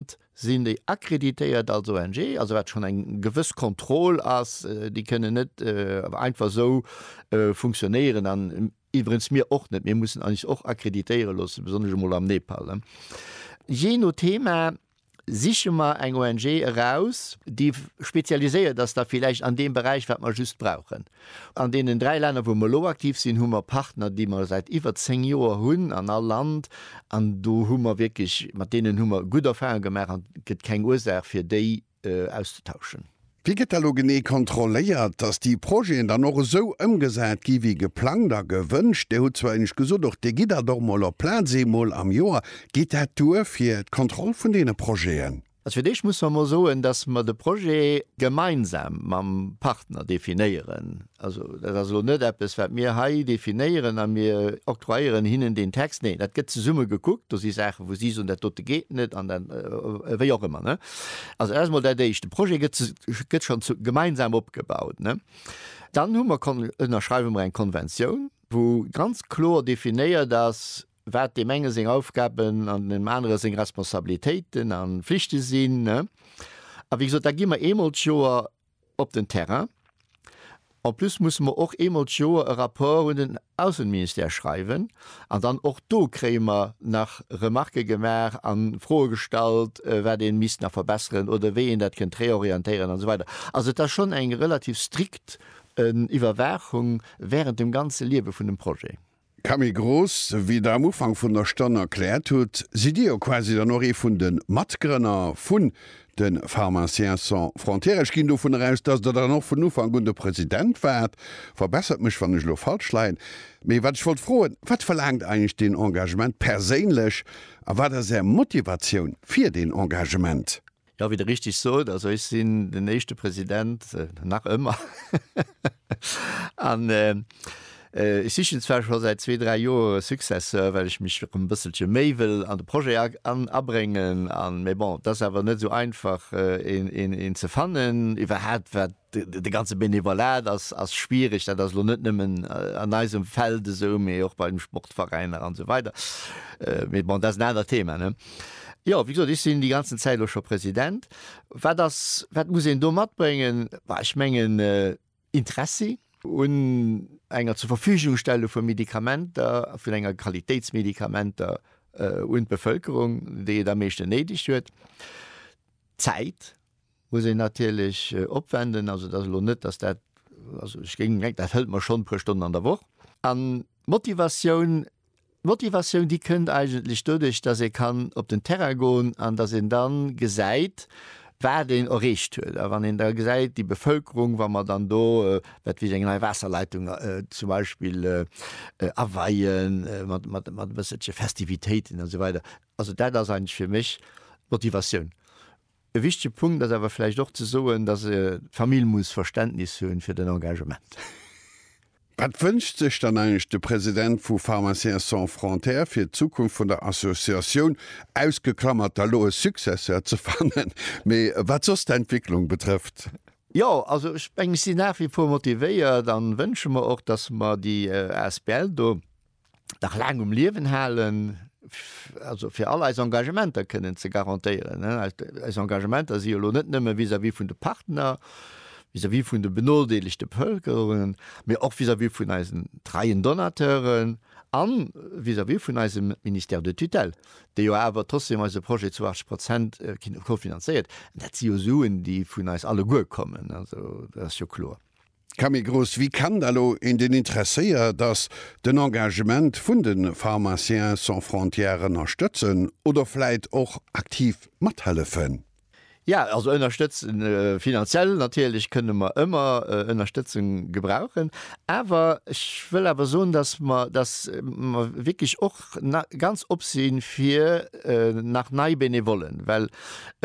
D'Stad sinn déi accréditéiert als ONG, also wat schonn eng gewëss Kontroll ass. Déi kënnen net einfach esou funktionéieren an iwwerens mir och net. Mir mussen eis och accréditéiere loosse, besonnesch emol am Nepal. Jee no Thema siche mer eng ONG eraus, déi spezialiséiert ass da villäicht an deem Beräich, wat mer just brauchen. An deenen dräi Länner, wou mer elo aktiv sinn, hu mer Partner, déi mer säit iwwer zéng Joer hunn an all Land. An do hu mer wierklech, mat deenen hu mer gutt Erfahrunge gemaach an et gëtt keng Ursaach, fir déi auszetauschen. Wéi gëtt da lo genee kontrolléiert, dass déi Projeten dann och esou ëmgesat gi wéi geplangt a gewënscht? Dir hutt zwar eenecht gesot och, Dir gitt dat och mol op Plaz eemol am Joer. Geet dat duer fir d'Kontroll vun deene Projeten? Also fir d'éischt musse mer emol soen, dass mer de Projet gemeinsam mam Partner definéieren. Also dat ass elo net eppes, wat mir hei definéieren a mir octroyéieren hinnen deen Text. Nee, dat gëtt zesumme gekuckt. Do si Saachen, wou si soen, dat dote geet net an dat, wéi och ëmmer. Also dat ass emol dat Éischt. De Projet gëtt schonn gemeinsam opgebaut. Dann hu mer, ënnerschreiwe mer eng Konventioun, wou ganz kloer definéiert ass, wat deem enge seng Aufgaben an deem anere seng Responsabilitéiten a Flichte sinn. A wéi gesot, da gi mer eemol d'Joer op den Terrain. En plus musse mer och eemol d'Joer e Rapport un den Ausseministère schreiwen. An dann och do kréie mer nach Remarquë gemaach a Froe gestallt, wat ee misst nach verbesseren oder wéi een dat kënnt réorientéieren an esou weider. Also et ass schonn eng relativ strikt Iwwerwaachung während dem ganze Liewe vun dem Projet. Camille Gross, Wéi Der am Ufank vun der Stonn erkläert hutt, sidd Dir jo quasi dann och ee vun de Matgrënner vun de Pharmaciens sans frontières. Ech ginn dovun eraus, dass Der dann och vun Ufank un de President waart. Verbessert mech, wann ech elo falsch leien. Mee wat ech wollt froen, Wat verlaangt eigentlech deen Engagement perséinlech a wat ass Är Motivatioun fir deen Engagement? Jo, wéi Der richteg sot, also ech sinn den éischte President, nach ëmmer, an ech sichen zwar scho säit zwee, dräi Joer e Successeur, well ech mech erëm e bësselche méi wëll an de Projet abréngen, an, mä bon, et ass awer net esou einfach een ze fannen, iwwerhaapt wat De ganze Benevolat ass schwierig. Dat ass elo net nëmmen an eisem Feld esou, mee och bei den Sportveräiner an esou weider. Mee bon, dat ass en anert Thema, ne? Jo, wéi gesot, ech sinn déi ganzen Zäit elo scho President. Wat ass, wat muss een do matbréngen? Bah, ech mengen, Interessi un enger Zurverfügungstellung vu Medikamenter, vun enger Qualitéitsmedikamenter un d'Bevölkerung, déi et am meeschten néideg huet. Zäit. muss een natierlech opwenden. Also et ass elo net, datt dat, also ech géing mengen, dat hëlt mer schonn e puer Stonnen an der Woch. An d'Motivatioun, d'Motivatioun, déi kënnt eigentlech doduerch, datt ee kann op den Terrain goen an datt een da gesäit, wat een erreecht huet. A wann een da gesäit, déi Bevëlkerung, wa mer dann do, wat weess ech, eng nei Waasserleitung zum Beispill aweien, mat, mat, mat e bësselche Festivitéiten, esou weider, also dat ass eigentlech fir mech d'Motivatioun. E wichtege Punkt ass awer vläicht och ze soen, dass d'Famill muss Verständnis hu fir den Engagement. Wat wënscht sech dann eigentlech de President vu Pharmaciens sans frontières fir d'Zukunft vun der Associatioun, ausgeklamert da lo e Successeur ze fannen, mee wat soss d'Entwicklung betrëfft? Jo, also ech mengen, ech sinn nach wie vor motivéiert an wënsche mer och, dass mer déi asbl do nach laang um Liewen halen, also fir all eis Engagementer kënnen ze garantéieren. Eis Engagementer si jo elo net nëmme vis-à-vis vun de Partner, vis-à-vis vun de benodeelegte Bevëlkerungen, mee och vis-à-vis vun eisen treien Donateuren a vis-à-vis vun eisem Ministère de tutelle, dee jo awer trotzdeem eise Projet zu 80 Prozent kofinanzéiert. Dat si jo Suen, déi vun eis alleguer kommen, also dat ass jo kloer. Camegros Wie kennt elo een deen interesséiert ass den Engagement vun de Pharmaciens sans frontières ënnerstëtzen oder vläit och aktiv mathellefen? Jo, also ënnerstëtzen, finanziell natierlech kënne mer ëmmer Ënnerstëtzung gebrauchen, awer ech wëll awer soen, datt mer datt mer wierklech och ganz op si fir nach nei Benevollen, well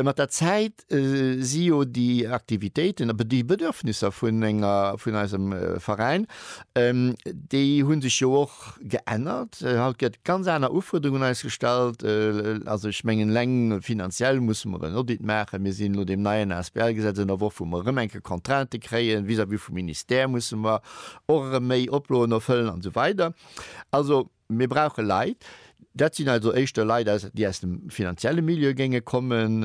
mat der Zäit dat si jo déi Aktivitéiten, awer déi Bedürfnisser vun enger, vun eisem Veräin, déi hu sech jo och geännert. Haut gëtt ganz aner Ufuerderung un eis gestallt. Also ech mengen, eleng finanziell musse mer en Audit maachen. Mir sinn no deem neien ASBL-Gesetz an der Woch, wou mer erëm eng Kéier Contraintë kréien vis-à-vis vum Ministère, musse mer och erëm méi Oploen erfëllen an esou weider. Also mir brauche Leit. Dat sinn also éischter Leit, déi aus dem finanzielle Milieu géinge kommen.